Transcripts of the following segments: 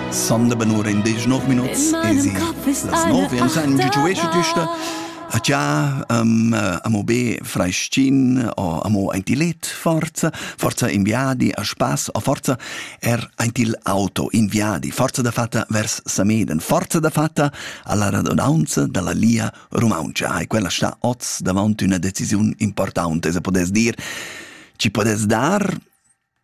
Sande benura in disch nov minuts esi las nov e san giuesce tüsta a cha um, amo be freschin o amo ein ti let forza forza inviadi a spass o forza er ein ti auto inviadi forza da fatta vers Sameden forza da fatta alla radunanza dalla Lia Rumaunca e quella sta oz davant una decisione importante se podes dir ci podes dar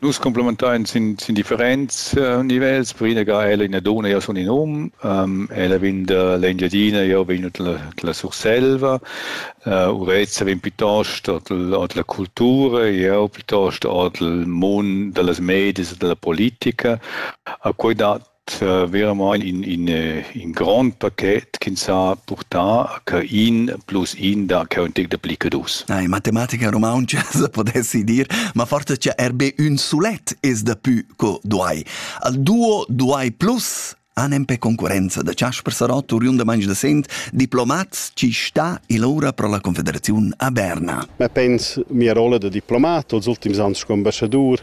Nus cumplementein sin, sin differents uh, nivels. Per ina ga ella ina dona, io sun in um, um ella vegn da l'Engiadina, io vegn dalla la Surselva, uh, Urezza vegn piuttost ord la cultura, io piuttost ord il mund dallas medias e dalla politica. A quei dat veramaing in in in grond paket ch'ins ha purtà che in plus in da cheu in tec dapli che dus. Na, in matematica rumauntscha se podessi dir, ma forsa cha er be ün sulet es dapü co duai. Al duo duai plus anem pe concurenza da Chasper Sarott uriun da manch da sent diplomats ci sta il ora pro la Confederaziun a Berna. Ma pens mia rolla da diplomat els ultims ans sco ambassadur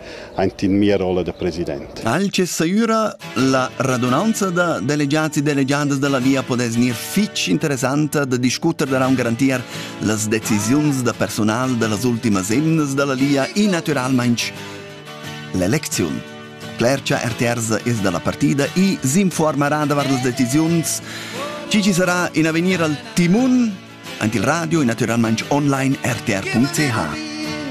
aint in mia rolla da president. Alche saüra la radunanza da delegiats e delegiadas da la via podess gnir fich interessanta da discuter daraun garantir las decisiuns da personal da las ultimas emnas da la Lia e natüralmaing l'elecziun. Clercha Erterza es da la partida e s'informarà davart las decisiuns chi ci sarà in avegnir al timun, aint il radio e natüralmaing online rtr.ch.